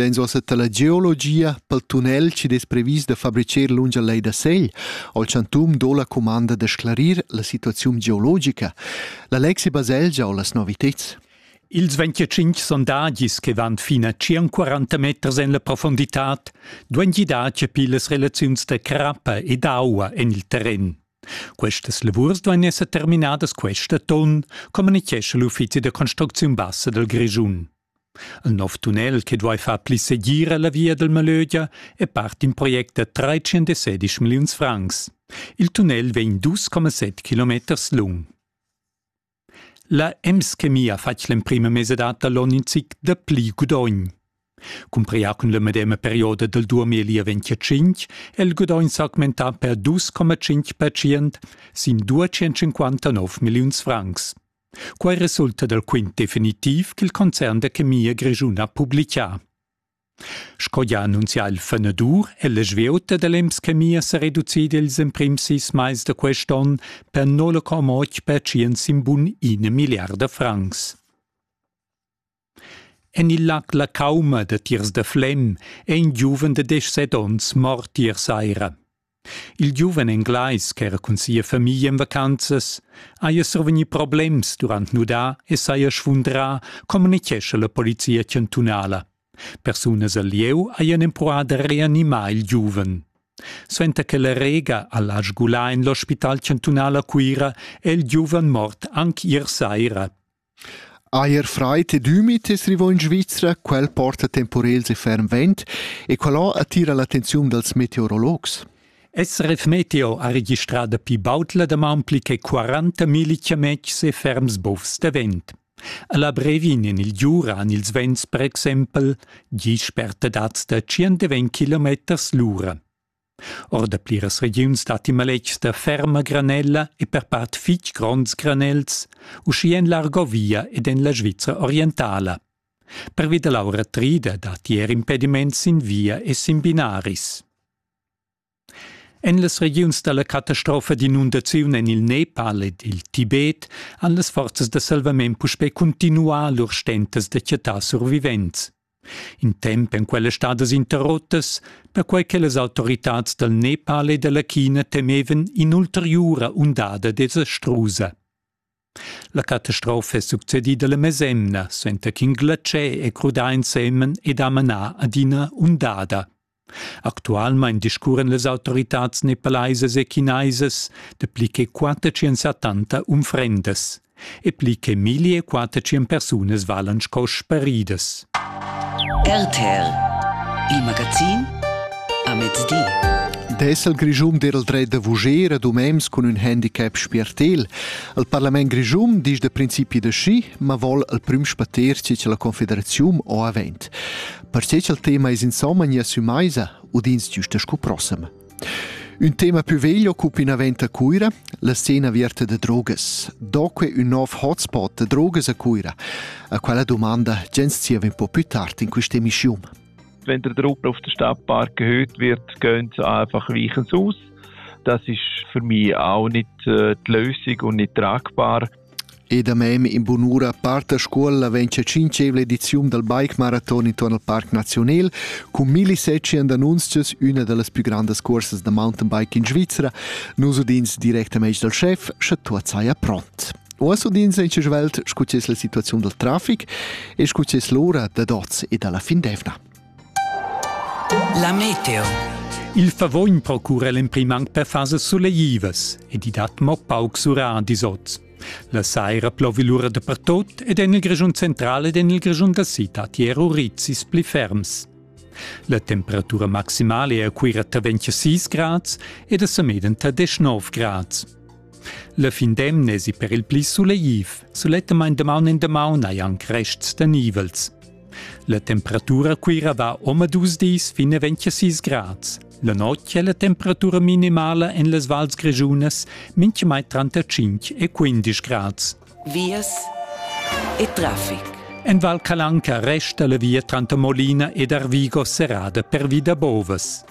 Vegns uossa la geologia pel tunnel chi es previs da fabricher lungia lei da Segl. Al chantum do la cumanda da sclarir la situaziun geologica. La Lexi Baselgia ho las noviteds. Ils 25 sondagis che van fin a 140 meters en la profonditad duan gidar chapir las relaziuns da crappa ed aua en il terren. Questas lavurs duan esser terminadas quest atton, communichescha l'uffizi da construcziun bassa dal Grischun. Ün nov tunnel che duai far pli segira la via dal Malögia è part d'ün project da 317 milliuns francs. Il tunnel vegn 2,7 kilometers lung. La Ems-Chemia fatg l'emprima mesa data l'on in zic da pli gudogn. Cumprià cun la medema perioda dal 2025 è il gudogn s'augmentà per 2,5% sin 259 milliuns francs. Quai resulta dal quint definitiv ch'il concern da chemia grischun ha publitgà. Sco gia annunzià il fenadur è la svieuta da l'Ems Chemia sa reducida ils emprims sis mais da quest onn per 0,8 percent sin bun ina milliarda francs. En il lac La Cauma datiers da Flem è in giuven da deschset onns mort ier saira. Il giuven englais ch'era cun sia famiglia en vacanzas haja survegnì problems durant nudà e saja sfundrà, communitgescha la polizia chantunala. Persunas al lieu hajan empruà da reanimar il giuven. Suenter che la rega ha lasc gulà en l'ospital chantunal a Cuira è il giuven mort anc ier saira. Eir fraid ed ümid es rivò in Svizra, quel porta temporels e ferm vent e qualà attira l'attenziun dals meteorologs. SRF Meteo ha registrà dapi baud la damaun pli che 40 milli chametgs e ferms bovs da vent. Alla brevin en il Giura han ils vents per exempel gis spertadads da 120 km l'ura. Or da pliras regiuns datti maletgs da ferma granella e per part fitg gronds granels, uschia en l'Argovia ed en la Svizra orientala. Pervi da l'aura trida datti er impediments sin via e sin binaris. En las regiuns da la catastrofa d'inundaziun en il Nepal ed il Tibet han las forzas da salvament puspè cuntinuà lur stentas da chattar survivents. In temp èn quellas stadas interrottas, perquai che las autoritads dal Nepal e dalla China temevan in'ulteriura undada desastrusa. La catastrofa è succedida la mesemna, suenter ch'in glacier è crudà ensemen ed ha manà ad ina undada. Actualmein discurren las autoritads nepalaisas e chinaisas dapli che 470 unfrendas e pli che 1400 persunas valan sco sparidas. RTL Il magazin a mezdi. Dessel Grischun derel dret da vuger ad umems cun ün handicap spiertel. Al Parlament Grischun disch da principi da schi, ma vol al prüm spater ci la Confederaziun o avent. Perche cha'l tema es insomma nia sü maisa, udins giüsta scu prossima. Un tema più vegl occupa inavent a Cuira, la scena aviarta da drogas. Doque un nov hotspot da drogas a Cuira, a quella domanda gens zieva un po più tard in questa emissiun. Wenn der Truppe auf den Stadtpark gehört wird, gehen sie einfach Weichens aus. Das ist für mich auch nicht äh, die Lösung und nicht tragbar. E da mem in bunura part a scuola vegn la tschintgevla ediziun dal bike maraton intuorn al Parc Naziunal cun millisecien d'annunzios üna da las plü grandas cuorsas da mountainbike in Svizra. Nus udins directamaing dal chef, scha tuot saja pront. Oas udins in svelt scu es la situaziun dal trafic e scu es l'ura dad oz e da la fin d'evna. La meteo. Il favogn procura l'emprim anc per fasas suleivas ed i dat mo pauc sura dis oz. La saira plovi lura dapertut ed en il Grischun central ed en il Grischun da citad ero rizis pli ferms. La temperatura maximale è a Cuira tra 26 grads ed a Sameden tra 19 grads. La fin d'emna esi per il pli sulegliv, sulettamain damaun en damaun hai anc rests da nivels. La temperatura Cuira va omadus dis fin a 26 grads. La notg è la temperatura minimala en las vals grischunas mintgamai tranter 5 e 15 grads. Vias e traffic. En Val Calanca resta la via tranter Molina ed Arvigo serrada pervi da bovas.